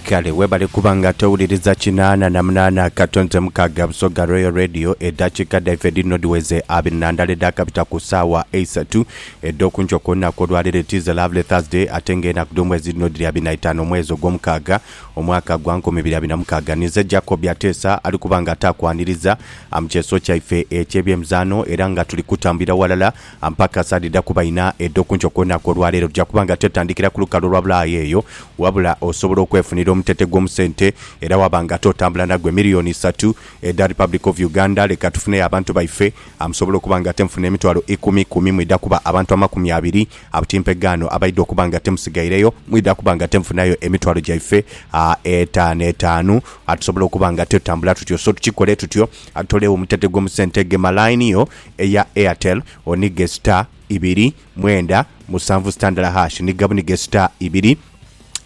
Kale webale kuba nga towuliriza kinaana na munaana kato nze mukaaga Busoga Royal Radio edhakiika dhaife dhino dhiweze abiri na ndala edhakabita ku saawa eisatu edh'okunkyo ku lunaku olwaleero It is a lovely Thursday ate nga enaku dh'omwezi dhino dhiri abiri na itaano omwezi ogw'omukaaga omwaka gwa nkumi ibiri abiri na mukaaga ninze Jacob Ateesa ali kuba nga ataakwaniriza mu kyeso kyaife eky'ebyemizaano era nga tuli kutambulira walala Ampaka sadhidha kuba inha edho ku nkyo ku lunaku olwa leero. Tuja kuba nga twetandikira ku lukalu olwa bulaaya eyo, wabula osobola okwefunira omutete gw'omu sente era waba nga ate otambula nagwo. Emiliyoni isatu edha Republic of Uganda, leka tufuneyo abantu baife amusobola okuba nga ate mufuna emitwalo ikumi ikumi, mwidha kuba abantu amakumi abiri abutimpe gaano abaidha okuba nga ate musigaireyo, mwidha kuba nga ate mufunayo emitwalo gyaife etaanu etaanu. Tusobola okuba nga ate tutambula tutyo. So tukikole tutyo, tutolewo omutete gw'omu sente, gema line yo. eya Airtel onige star ibiri mwenda musanvu star ndala hash ni gabunige star ibiri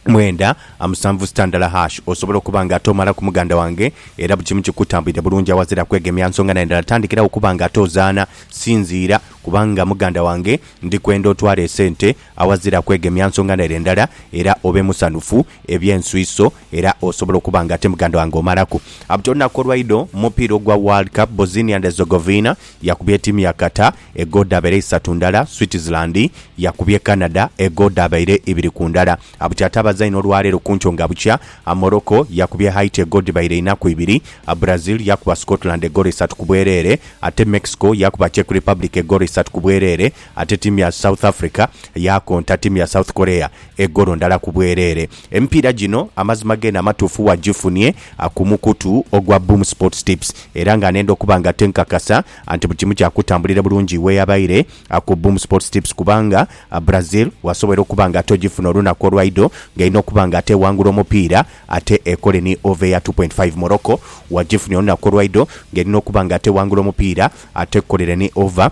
mwenda amusanvu star ndala hash osobola okuba nga ate omalaku muganda wange era buli kimu kikutambulire bulungi awazira kwegemya nsonga na ndala tandikirawo okuba nga ate ozaana sinziira kubanga muganda wange ndikwenda otwale esente Awazira kwegemya nsonga n'ere ndala era obe musanhufu eby'ensuiso era osobola okuba nga ate muganda wange omalaku. Abti olunaku olwaidho mu mupiira ogwa World Cup, Bosnia and Herzegovina yakubye etiimu ya Qatar egoo dhabaire isatu ndala, Switzerland yakubye Canada egoo dhabaire ibiri ku ndala. Abti ate abazaine olwaleero kunkyo nga bukya, Morocco yakubye Haiti egoo dhibaire ina ku ibiri, Brazil yakuba Scotland egolo isatu ku bwereere ate Mexico yakuba Czech Republic egolo isatu ku bwereere. Ate tiimu ya South Africa yaakonta tiimu ya South Korea egolo ndala ku bwereere. Emipiira gino amazima geene amatuufu wagifunie ku mukutu ogwa Boom Sports Tips era nga nenda okuba nga te nkakasa nti buli kimu kyakutambulira bulungi weyabaire ku Boom Sports Tips kubanga Brazil wasobwoire okuba nga ate ogifuna olunaku olwaidho nga erina okuba nga ate ewangula omupiira ate ekole ni over eya two point five. Morocco wagifunie olunaku olwaidho nga erina okuba nga ate ewangula omupiira ate ekolere ni over.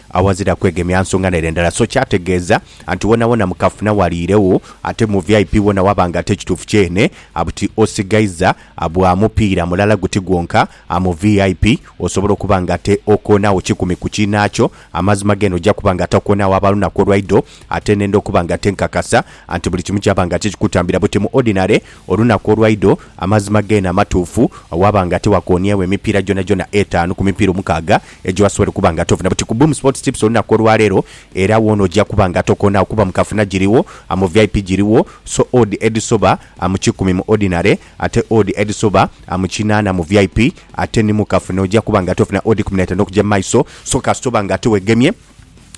Awazira kwegemya nsonga n'ere ndala so kyategeeza nti wonawona mu kafuna waliiregho ate mu vip wona waba nga ate kituufu kyene buti osigaiza bwa mupiira mulala guti gwonka mu vip osobola okuba nga ate okoonagho kikumi ku kiinaakyo. Amazima g'eno ojja kuba nga ate okoonagho aba lunaku olwaidho ate n'enda okuba nga ate nkakasa nti buli kimu kyaba nga ate kikutambira buti mu ordinary olunaku olwaidho. Amazima g'eno amatuufu waba nga ate wakooniegho emipiira gyonagyona etaanu ku mipiira omukaaga ejo asobole kuba nga tovuna buti ku Boom Sports Tips olunaku olwaleero era woona oja kuba nga tokoonagho kuba mu kafuna giriwo, mu vip giriwo, so odd edhisoba mu kikumi mu ordinary ate odd edhisoba mu kinaana mu vip ate ni mu kafuna oja kuba nga tofuna odd kumi na itaanu okugya mu maiso so kasita oba nga ate wegemye.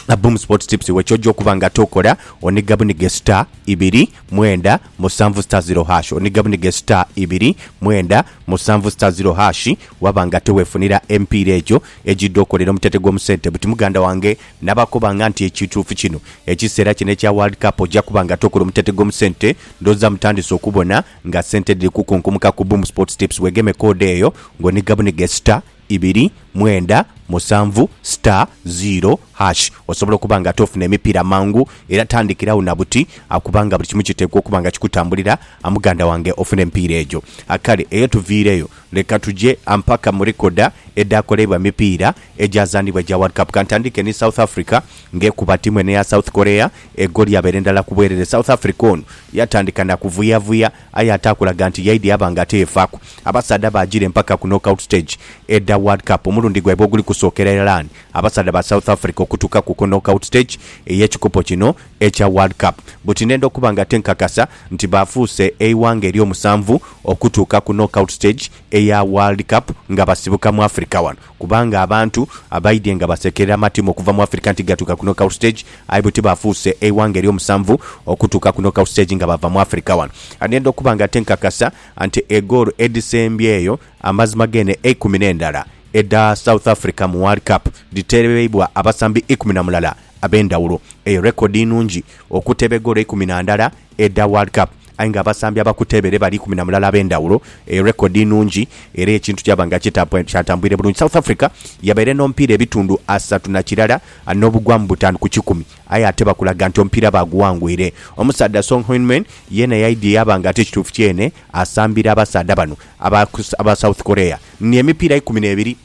A Boom Sports Tips we ky'oja okuba nga tokola, oniga bunige star ibiri mwenda musanvu star zero hash oniga bunige star ibiri mwenda musanvu star zero hash waba nga tewefunira emipiira egyo egidha okolera omutete gw'omu sente buti muganda wange nabakoba nga nti ekituufu kino ekiseera kino ekya World Cup oja kuba nga tokola omutete gw'omu sente ndhooza mutandise okubona nga sente dhiri kukunkumuka ku Boom Sports Tips wegeme code eyo ng'oniga bunige star ibiri, mwenda, musanvu, star, ziiro, hash osobola okuba nga ate ofuna emipiira mangu era tandikirawo na buti kubanga buli kimu kiteekwa okuba nga kikutambulira muganda wange ofune emipiira egyo. Kale eyo tuviireyo leka tuje mpaka mu likoda edhaakoleibwa emipiira egyazanibwa egya World Cup. Kantandike ni South Africa nga ekuba ttiimu eno eya South Korea egoli yabeera ndala ku bwerere. South Africa ono yatandika na kuvuyavuya Aye ate akulaga nti yaidhi aba nga teyeefaaku. Abasaadha abaajira empaka ku knockout stage edha World Cup omulundi gwaibwe oguli kusookera Iran, abasaadha ba South Africa okutuukaku ku knockout stage ey'ekikopo kino ekya World Cup buti ndenda okuba nga tenkakasa nti baafuuse eighanga ery'omusanvu okutuuka ku knockout stage eya World Cup nga basibuka mu Africa wano. Kubanga abantu abaidhye nga baseekerera amatimu okuva mu Africa nti gatuuka ku knockout stage, aye bwe ti baafuuse eighanga ery'omusanvu okutuuka ku knockout stage nga baava mu Africa wano. Ndhenda okuba nga ate nkakasa nti egoolo edhisembyeyo amazima geene eikumi n'endala edha South Africa mu World Cup dhiteereibwa abasambi ikumi na mulala ab'endhawulo. Eyo rekodi nnungi okuteba egoolo eikumi na ndala edha World Cup. Aye nga abasambi abakuteebere bali ikumi na mulala ab'endhawulo, erekodi nnhungi era ekintu kyaba nga kyatambwire bulungi. South Africa yabaire n'omupiira ebitundu asatu na kirala n'obugwamu butaanu ku kikumi aye ate bakulaga nti omupiira baaguwangwire. Omusaadha Song Hyunmin yeena yaidhie yaba nga ate kituufu kyene asambira abasaadha bano aba South Korea ni emipiira ikumi n'ebiri.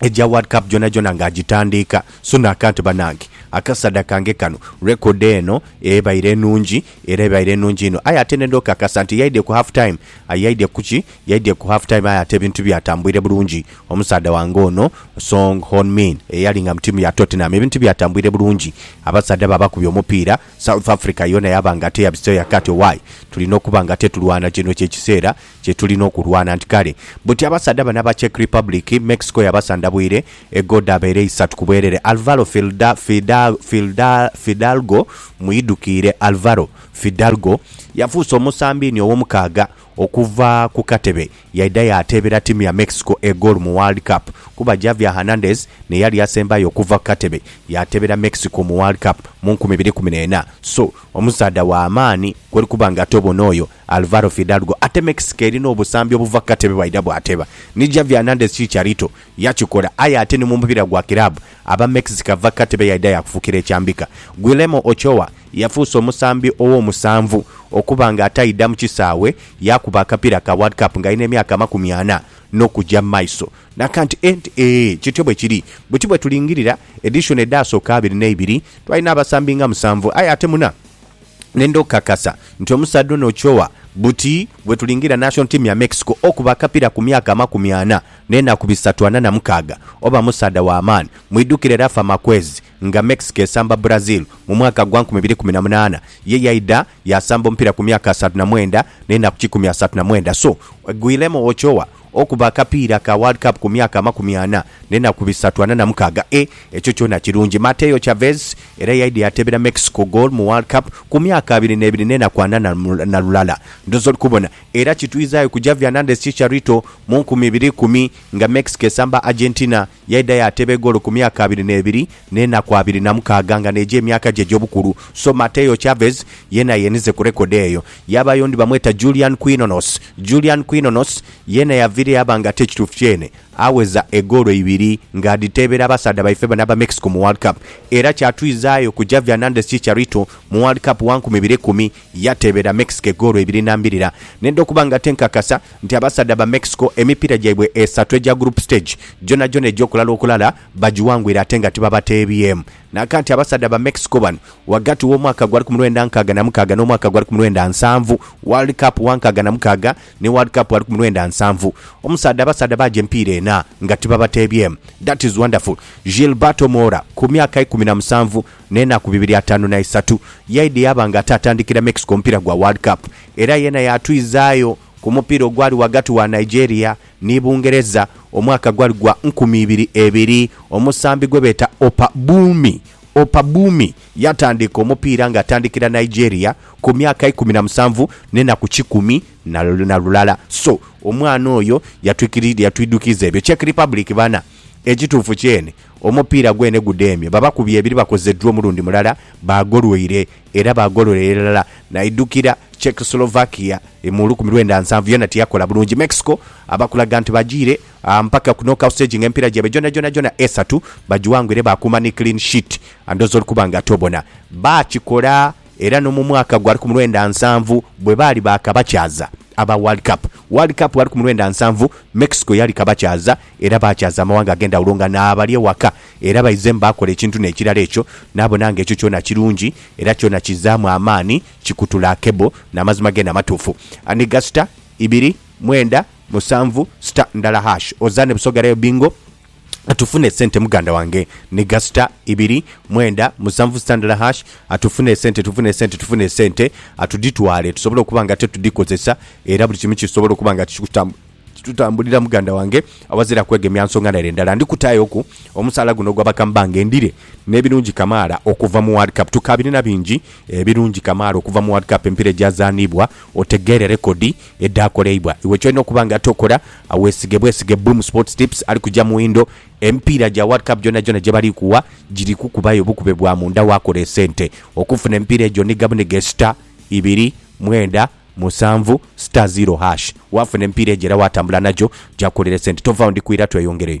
egya World Cup gyonagyona nga agitandiika. Sunak ati, Banange, akasaadha kange kano record eno ebaire nnungi era ebaire nnungi inho aye ate nenda okakasa nti yaidhye ku half time. Aye yaidhye ku ki? Yaidhye ku half time aye ate ebintu byatambwire bulungi. Omusaadha wange ono Song Hon Min eyali nga mu tiimu ya Tottenham ebintu tibyatambwire bulungi. Abasaadha babakubye omupiira, South Africa yoona yaba nga ate yabiseeyo yakaati owaye tulina okuba nga ate tulwana, kino ky'ekiseera. kye tuli n'okulwana nti kale buti abasaadha bano aba Czech Republic, Mexico yabasandabwire e goo dhabaire isatu ku bwerere Alvaro Filda, Fida, Filda, Fidalgo, mwidukiire Alvaro Fidalgo yafuuse omusambiini ow'omukaaga okuva ku katebe yaidha yaateebera ttiimu ya Mexico e goolo mu World Cup kuba Javier Hernandez n'eyali asembayo okuva ku katebe yaateebera Mexico mu World Cup mu nkumi ibiri kumi n'ena. So, omusaadha wa maani kw'oli kuba nga tobona oyo Alvaro Fidalgo atemekisika eri n'obusambi obuva ku katebe bwaidha bwateba ni Xavi Hernandez Chicharito yakikola aye ate ni mu mupiira gwa kiraabu aba Mexico ava ku katebe yaidha yaakufukira ekyambika. Guillermo Ochoa yafuuse omusambi ow'omusanvu okuba nga ataidha mu kisaawe yaakuba akapiira ka World Cup ng'ali n'emyaka amakumi ana n'okuja mu maiso. Naka nti, Ee, nti, ee, kityo bwe kiri. Buti bwe tulingirira edishoni edhaasooka abiri n'eibiri, twalina abasambi nga musanvu aye ate muna. Nenda okukakasa nti omusaadha ono okyowa buti bwetulingira national team ya Mexico okuba akapira ku myaka amakumi ana nenaku bisatu ana na mukaaga oba musaadha wa maani. Mwidukire Rafa Marquez nga Mexico esamba Brazil mu mwaka gwa nkumi ibiri kumi na munaana ye yaidha yasamba omupira ku myaka asantu na mwenda nenaku kikumi asantu na mwenda so Guillermo Ochoa Okuba akapiira ka World Cup ku myaka amakumi ana n'enaku bisatu ana na mukaaga e ekyo kyona kirungi. Mateo Chavez era yaidha yateebera Mexico goal mu World Cup ku myaka abiri n'ebiri n'enaku ana na lulala. Ndhoozi oli kubona. Era kitwizaayo ku Javi Hernandez Chicharito mu nkumi ibiri ikumi nga Mexico esamba Argentina. Yaidha yaateba egoolo ku myaka abiri n'ebiri n'enaku abiri na mukaaga nga n'egyo emyaka gye egy'obukulu. So Mateo Chavez yeena yeenize ku rekodi eyo. Yaabayo ondi bamweta Julian Quinones. Julian Quinones yeena yaviire yaaba nga ate ekituufu kyeene agheza egoolo ibiri ng'adhiteebera abasaadha baife bano aba Mexico mu World Cup. Era kyatwizaayo ku Javier Hernandez Chicharito mu World Cup wa nkumi ibiri ekumi Yateebera Mexico egoolo ibiri na mbirira nenda okuba nga tenkakasa nti abasaadha ba Mexico emipiira gyaibwe esatu egya group stage gyonhagyonha egy'okulala okulala bagiwangwire ate nga tibabateebyemu naka nti abasaadha ba Mexico bano ghagati w'omwaka gwa rku mwenda nkaaga na mukaaga n'omwaka gwa rku mwenda nsanvu World Cup wa nkaaga na mukaaga ni World Cup wa rku mwenda nsanvu omusaadha abasaadha baaja emipiira ena nga tibabateebyemu That is wonderful Gilberto Mora ku myaka ikumi na musanvu N'enaku bibiri ataanu na isatu yaidha yaaba nga ate atandikira Mexico omupiira gwa World Cup era yeena yaatwizaayo ku mupiira ogwali ghagati wa Nigeria ni Bungereza omwaka gwali gwa nkumi ibiri ebiri. Omusambi gwe beeta Opa Bumi, Opa Bumi, yatandiika omupiira nga atandikira Nigeria ku myaka ikumi na musanvu n'enaku kikumi na lulala. So, omwana oyo yatwidhukiiza ebyo. Czech Republic bana. Ekituufu kyene, omupiira gwene gudheemye. Babakubye ebiri bakoze dro omulundi mulala, baagolweire era baagololera irala. Naidhukira Czechoslovakia mu lukumi lwenda nsanvu yoona tiyakola bulungi. Mexico abakulaga nti bajiire mpaka ku knockout stage nga emipiira gyaibwe gyonagyona esatu bagiwangwire baakuuma ni clean sheet. Ndhooza oli kuba nga tobona. Baakikola! Era n'omu mwaka gwa lukumulwenda nsanvu bwe baali baakabakyaza aba World Cup, World Cup wa lukumulwenda nsanvu, Mexico yali kabakyaza era baakyaza amawanga ag'endhawulo nga naabali ewaka. Era baizemu baakola ekintu n'ekirala ekyo, naabona nga ekyo kyona kirungi era kyona kizaamu amaani, kikutula akebo n'amazima geene amatuufu. Anigha sita ibiri, mwenda, musanvu, sita ndala hash. Ozaane Busoga Rayo Bingo. Atufune esente muganda wange ni gasita ibiri mwenda musanvu sita ndala hash atufune esente tufune esente tufune esente atuditwale tusobole okuba nga ate tudikozesa era buli kimu kisobole okuba nga kitutambulira muganda wange awazira kwegemya nsonga nere ndala ndikutayo ku omusaala guno ogwa bakambange ndire nebirungi kamaala okuva mu world cup tukabirina bingi ebirungi kamaala okuva mu world cup empira egyazaanibwa otegeere rekodi edhaakoleibwa. Iwe ky'olina okuba nga tokola, weesige bwesige Boom Sports Tips ali kuja mu windo. Emipiira gya World Cup gyonagyona gye bali kuwa giri kukubayo bukube bwa munda waakola esente. Okufuna emipiira egyo nhiga bunhige star ibiri mwenda musanvu star zero hash. Waafuna emipiira egyo era waatambula nagyo, gyakukolera esente. Tovaawo, ndi ku ira tweyongereyo.